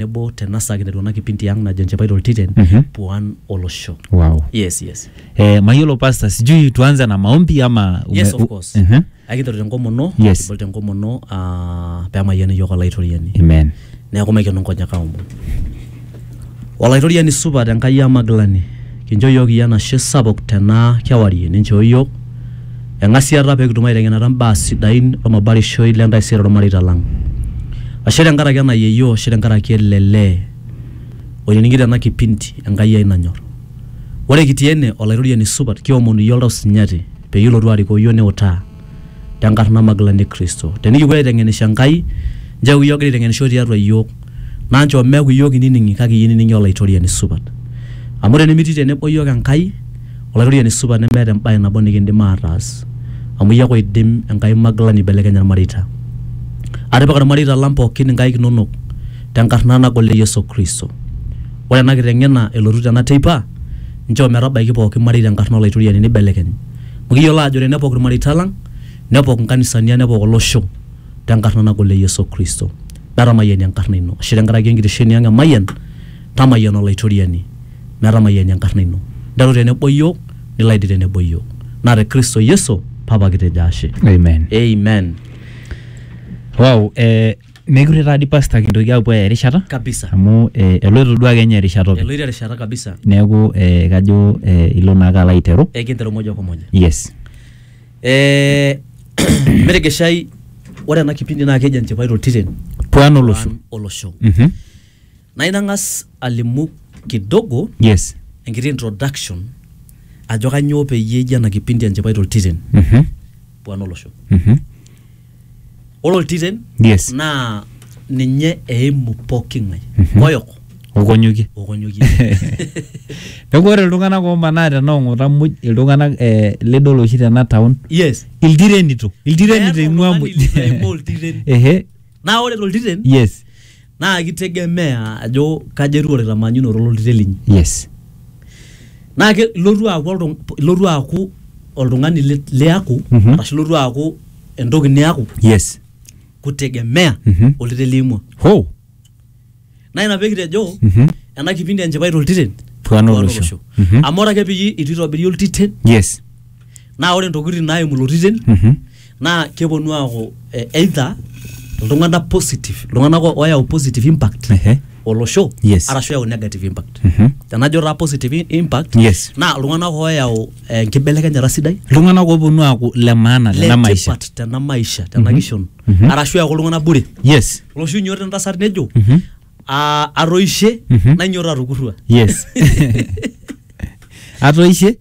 nebo tena saa kinetu ena kipindi ang najo nchipai toltiten Mhm. puan olosho wow. yes yes eh, mayiolo pasta sijui tuanze na maombi ama ume- yes of u- course Mhm. akinteru tenkomono Yes. kibol tenkomono ah, pemayiani yiok olaitoriani amen neeku maikeno nkonyek aomon olaitoriani supat enkai amagilani Kincho iyiook iyie enashe sapuk tena kewarie ninchoo iyiook eng'asiata pee kitum aiteng'enata imbaa sidain olmabarishoi le ntaisere olmareita lang. Ashe tenkaraki ena yieyio, ashe tenkaraki ele lee oinining'ito ena kipindi Enkai ai nanyor. Ore kitii ene, Olaitoriani supat, kiomonu iyie oltau sinyati peyie ilotu arikoo iyiook niutaa. tenkarna magilani e Kristo. Tenikipuo aiteng'enisho Enkai, nchoo eeku iyie ogira aiteng'enisho tiatua iyiook, naa nchoo meeku iyiook inining'i kake iyie inining'i Olaitoriani supat. Amu tenimitii tenebo iyiook Enkai, Olaitoriani supat nemeeta embae nabo nikindim aataas. Amu iyie ake oidim Enkai magilani aibelekenya ilmareita. Atipika ilmareita lang pooki inkaik inonok tenkarna nagol e Yesu Kristo. Ore ena kiteng'ena elotu tena teipa, nchoo metabaiki pooki marei tenkarna Olaitoriani neibelekeny. Amu kiyiolo aajo tenepok ilmareita lang, nepok inkanisani ang, nepok olosho tenkarna nagol e Yesu Kristo. Netamayiani enkarna ino. Ashe tenkaraki enkitesheni ang e Mayian, tamayiana Olaitoriani metamayiani enkarna ino. Nteru tenebo iyiook, nilo aidip tenebo iyiook. Naa te Kristo Yesu, Papa kitejo ashe. Amen. Amen. Wow, eh, Mekure taa dii pasta kintoki aapuo aaya erishata kabisa amu eh, eloito duo ake ninye erishata openy. eloito erishata kabisa Neeku eh, kajo eh, ilo naake alo aiteru. ekinteru moja kwa moja Yes. Eh, metegeshai ore ena kipindi naa keji enchipai toltiren Puan olosho. Puan olosho Mhm. naa inang'as alimu kidogo Yes. enkiti introduction ajo kanyoo peyie eji ena kipindi enchipai toltiren Mhm. puan olosho Mhm. ore oltiren Yes. naa ninye eimu pooki ng'ae Mhm. moyok okonyokie okonyokie neeku ore iltung'anak omanaa tena ong'ota muj iltung'anak eh, lidol oshi tena town yes iltirenito iltirenito Meeta eing'ua oltung'ani muj litu eimaa oltiren. ehe naa ore toltiren yes naa kitegemea ajo kaja etiu orkitamanyunoto ololtiren linyi yes naa ke- ilotu aaku oltung- ilotu aaku oltung'ani li- liaku Mhm. arashu ilotu aaku entoki niaku yes kutegemea Mhm. oltiren liimua ho naa ina pekitejo Mhm. ena kipindi enchipai toltiren Puaan olosho. Mhm. amu ore ake peyie itu itobiri oltiten yes naa ore ntokitin naimu ilo titin Mhm. naa keponu aaku eh, either iltung'anak positive iltung'anak o- oyau positive impact Ehe. olosho Yes. arashu eyau negative impact Mhm. tenajo taa positive i- impact Yes. naa iltung'anak oyau eh, enkibelekenyata sidai iltung'anak ooponu aaku le maana tena maisha letipat tena maisha tena kishon Mhm. arashu eyaku iltung'anak bure yes loshi inyoto entasat nejo Mhm. "Ah, atoishe Mhm. nainyioto atukurrua yes atoishe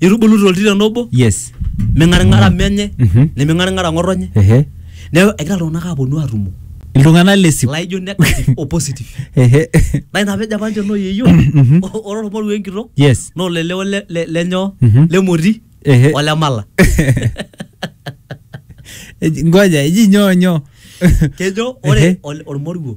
nitubulu toltiren obo yes ming'aring'ara menye Mhm. neming'aring'ara ng'otonye ehe neeku egira iltung'anak aaponu aatumo iltung'anak lesip laijo negative o positive ehe naa ina pejo apa ninche noo yeyio Mhm. o- ore olmoruo enkitok yes naa olele ole- le- lenyoo Mhm. lemoti Ehe. olemala Eji- ngoja eji nyoo nyoo kejo Ehe. ore ol- olmoruo